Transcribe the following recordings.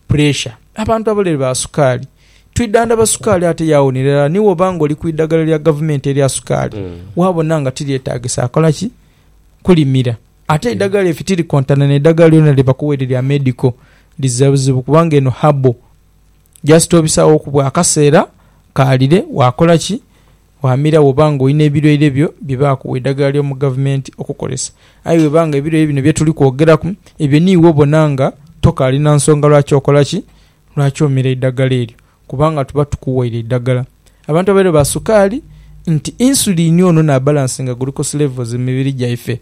puleesha. Abantu abalwaire ba sukaali twidhandhaba sukaali ate yaawonera irala. Ni bw'oba ng'oli ku idhagala lya gavumenti erya sukaali waabona nga tiryetaagisa kola ki? Kulimira. Ate eidhagala efi tirikontana n'eidhagala lyona lye bakuwa eryo erya medico. Liza buzibu kubanga eno herbal. Just obisaghoku bwa kaseera kaalire waakola ki? Ghanhumira bw'oba ng'olina ebilwaire byo bye baakuwa eidhagala ly'omu gavumenti okukozesa. Aye bw'eba nga ebilwaire bino bye tuli kwogeraku, ebyo niiwe obona nga tokaali na nsonga lwaki okola ki? Lwaki omira eidhagala eryo? Kubanga tuba tukuwaire eidhagala. Abantu abaidha ba sukaali nti insulini ono n'abalansinga glucose levels mu mibiri gyaife.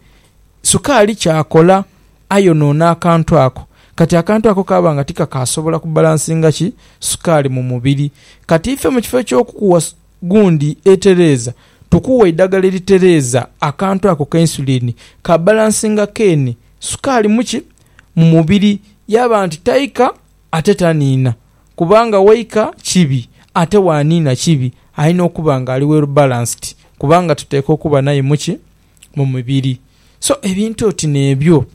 Sukaali ky'akola ayonoona akantu ako. Kati akantu ako kaaba nga tikakaasobola kubalansinga ki? Sukaali mu mubiri. Kati ife mu kifo eky'okukuwa gundi etereeza, tukuwa eidagala eritereeza akantu ako ka insulin ka balansinga keene sukaali mu ki? Mu mubiri. Yaba nti taika ate taniina, kubanga waika kibi ate waaniina kibi. Alina okuba nga ali well balanced kubanga tuteekwa okuba naye mu ki? Mu mubiri. So ebintu oti n'ebyo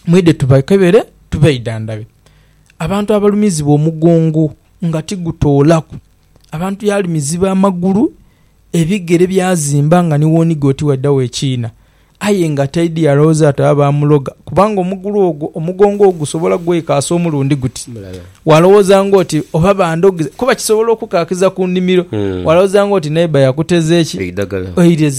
mwidhe tubakebere tubeidhandhabe. Abantu abalumizibwa omugongo nga tigutoolaku. Abantu yaalumiziba amagulu, ebigere byazimba nga ni w'oniga oti waidha wekiina. Aye nga taidhi yalowooza ati oba baamuloga, kubanga omugulu ogwo omugongo ogusobola gwekaasa omulundi guti. Walowooza ng'oti oba bandhogiza, kuba kisobola okukaakiza ku nnhimiro. Walowooza ng'oti neighbour yakuteza ki? Eidhagala.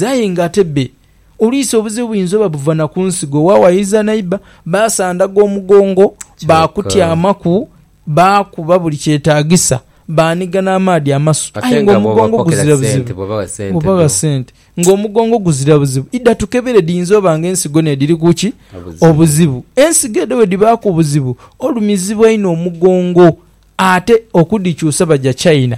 Aye ng'ate bbe. Oluisi obuzibu buyinza oba buva na ku nsigo. Waawayiza neighbour, baasandaga omugongo, baakutyamaku. Baakuba buli kyetaagisa, baaniga n'amaadhi amasu, aye ng'omugongo guzira buzibu. Bw'oba gha sente ng'omugongo guzira buzibu, idha tukebere dhiyinza oba nga ensigo n'edhiri ku ki? Obuzibu. Ensigo edho bwe dhibaaku obuzibu, olumizibwa inho omugongo. Ate okudhikyusa baja China.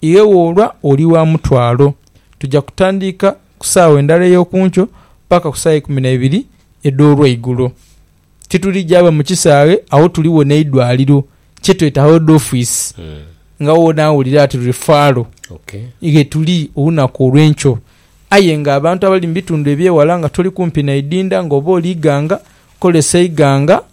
Iwe woolwa oli wa mutwalo. Tuja kutandiika ku saawa endala ey'oku nkyo paka ku saawa eikumi na ibiri edh'olweigulo. Titulija va mu kisaghe agho tuligho n'eidwaliro kye tweta head office nga wo onaawulira ati Refferal ghe tuli olunaku olw'enkyo. Aye nga abantu abali mu bitundu eby'eghala nga toli kumpi na idinda nga oba oli Iganga, kozesa Iganga.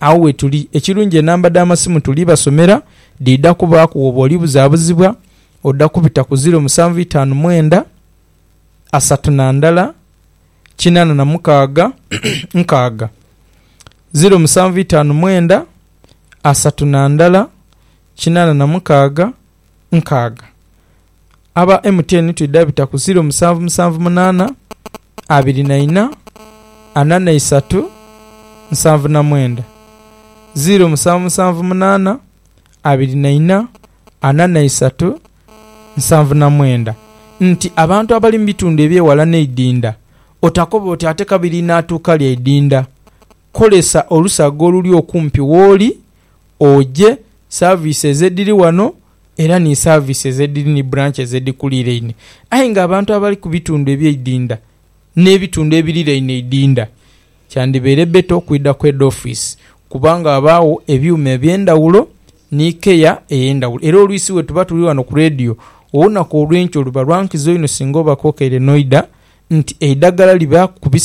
agho wetuli. Ekirungi enamba dha masimu tuli basomera dhidha kubaaku woba oli buzabuzibwa odha kubita ku ziro musanvu itaanu mwenda asatu na ndhala kinana na mukaaga nkaaga, ziro musanvu itaanu mwenda asatu na ndhala kinana na mukaaga nkaaga. aba MTN twidha bita ku ziiro musanvu musanvu munaana abiri na ina ana na isatu nsanvu na mwenda, ziiro musanvu musanvu munaana abiri na ina ana na isatu nsanvu na mwenda nti abantu abali mu bitundu eby'eghala n'eidhindha otakoba oti ate kabiri naatuuka lya idhindha, kozesa olusaga oluli okumpi w'oli oje saaviisi ezo edhiri ghano era ni services edhiri ni branches edhikuliraine aye nga abantu abali ku bitundu ebyeidinda n'ebitundu ebiriraine eidinda kyandibaire better okwidha ku head office kubanga ghabaagho ebyuma eby'endhaghulo ni care ey'endhaghulo era olwisi bwetuba tuli ghano ku radio olunaku olw'enkyo luba lwa nkizo inho singa oba kokeire n'oidha nti eidhagala libaaku ku bisa.